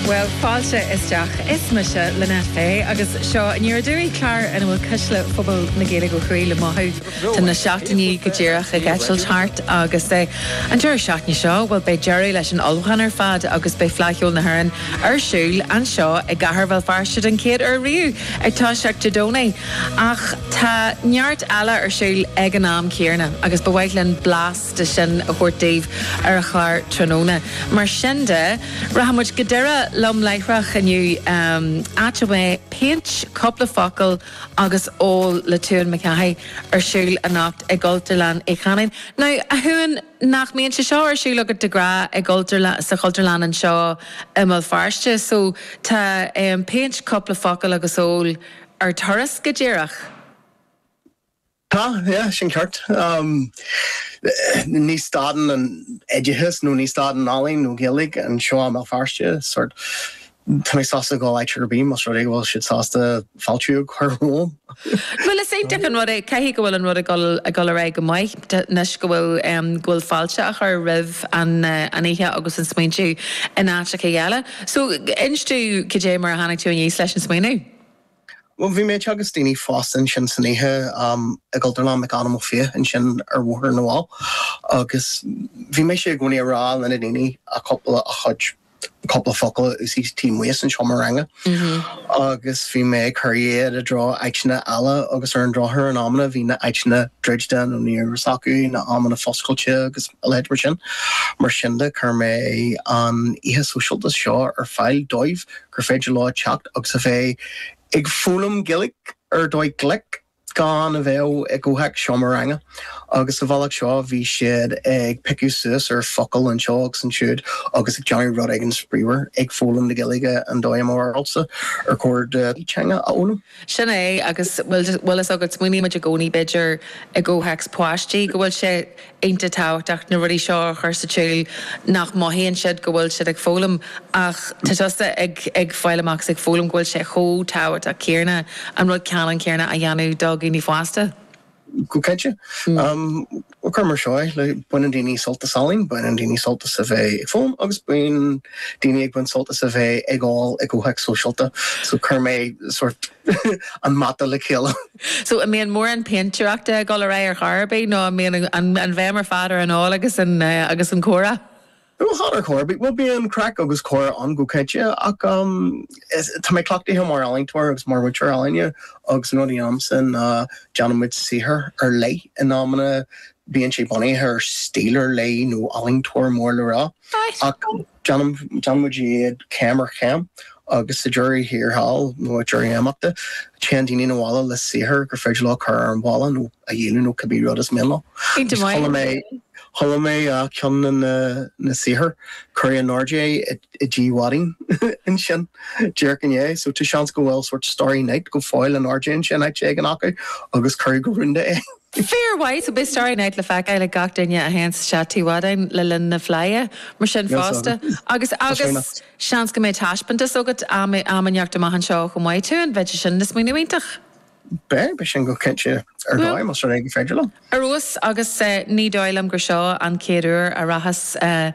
Bhuel, fáilte isteach. Is mise Lynette Fay agus seo Aniar Aduaidh, clár ina bhfuil cuisle phobal na Gaeilge ó thuaidh le mothú. Tá na seachtainí go díreach ag eitilt thart agus an deireadh seachtaine seo, bhuel, beidh deireadh leis an ullmhúchán ar fad agus beidh Fleadh Cheoil na hÉireann ar siúl anseo i gcathair Bhéal Feirste den chéad uair riamh, ag toiseacht Dé Domhnaigh. Ach tá neart eile ar siúl ag an am céarna agus ba mhaith linn blas, de sin a thabhairt daoibh ar an chlár tráthnóna. Mar sin de, rachaimid go Doire lom láithreach inniu, áit a mbeidh Péint, Cúpla Focal agus Ól le Tuan McCahey ar siúl anocht i gCultúrlann Uí Chanáin. Now, a Thuan, nach mbíonn sé seo ar siúl agat de ghnáth i gCultúrlann, sa Chultúrlann anseo i mBéal Feirste? So, tá an Péint, Cúpla Focal agus Ól ar turas, go díreach. Ah, yeah, sin ceart. Ní stadann an oideachas nó ní stadann ealaín nó Gaeilge anseo i mBéal Feirste. Sórt, tá mé sásta dul áit ar bith más rud é go bhfuil siad sásta fáiltiú a chur romham. Bhuel, is iontach an rud é, caithfidh go bhfuil an rud ag dul, ag dul ar aghaidh go maith anois go bhfuil, go bhfuil fáilte á chur roimh an, an oíche agus an smaointiú in áiteachaí eile. So, inis domh cad é mar a tháinig tú aníos leis an smaoineamh? Bhuel, bhí mé ag teagasc daoine fásta ansin san oíche i gCultúrlann McAdam Ó Fiaich ansin ar Bhóthar na bhFál agus bhí mise i gcónaí ag rá le na daoine a cúpla a chuid cúpla focal a úsáid taobh amuigh as an seomra ranga agus bhí mé ag cur iad i dtreo áiteanna eile agus ar an drochuair in amanna bhí na áiteanna druidte nó ní raibh fhios acu na amanna foscailte agus a leithéid mar sin. Mar sin de, chuir mé an oíche sóisialta seo ar fáil dóibh. gur féidir leo teacht agus a bheith ag foghlaim Gaeilge ar dhóigh ghlic gan a bheith i gcomhthéacs seomra ranga agus sa bhealach seo bhí siad ag piocadh suas ar focail anseo agus ansiúd agus ag déanamh rud éigin spraíúil ag foghlaim na Gaeilge an dóigh i mo bharúilse ar chóir duit teanga a fhoghlaim. Sin é, agus, bhfuil, bhfuil fhios agat, smaoinímid i gcónaí, b'fhéidir, i gcomhthéacs páistí, go bhfuil sé iontach tábhachtach na rudaí seo a chur sa tsiúl nach mothaíonn siad go bhfuil siad ag foghlaim, ach tá tusa ag, ag fáil amach is ag foghlaim go bhfuil sé chomh tábhachtach céarna an rud ceannann céarna a dhéanamh do dhaoine fásta. Go cinnte. Cuir mar seo é, baineann daoine sult as ealaín, baineann daoine sult as a bheith ag foghlaim agus bíonn daoine ag baint sult as a bheith ag ól i gcomhthéacs sóisialta. So chuir mé sórt an mata le chéile. So an mbíonn mórán péintéireachta ag dul ar aghaidh ar chor ar bith nó an mbíonn an bhéim ar fad ar an ól agus an comhrá? Ó cheartlár, bhuel bíonn craic agus comhrá ann go cinnte ach tá mé cleachtaithe mar ealaíontóir agus mar mhúinteoir ealaíne agus an rud a dhéanaimse ná déanann muid saothar ar leith, in amanna bíonn sé bunaithe ar stíl ar leith nó ealaíontóir mór le rá ach déanann muid iad céim ar chéim. Agus sa deireadh thiar thall, nó ag deireadh imeachta, téann daoine 'na bhaile le saothar gur féidir leo a chur ar an bhalla, nó a dhíol, nó cibé rud is mian leo. Chuala mé go raibh ceann de na saothair, cuireadh in airde é i dTigh Mhaidín ansin díreach inné, so tá seans go bhfuil sórt Starry Night go fóill in airde ansin áit éigin acu, agus cuireadh go rúnda é. Fair play! So beidh Starry Night le feiceáil ag gach duine a théanns isteach Tigh Mhaidín le linn na Fleidhe, mar sin fosta. Agus, agus. Seans go mbeidh taispeántas agat am inteacht amach anseo chomh maith. Tá, b'fhéidir, sin smaoineamh iontach. Beidh, beidh sin go cinnte. Ar dóigh, más rud é gur féidir liom. Ar fheabhas, agus ní dóigh liom gur seo an chéad uair a rachaidh.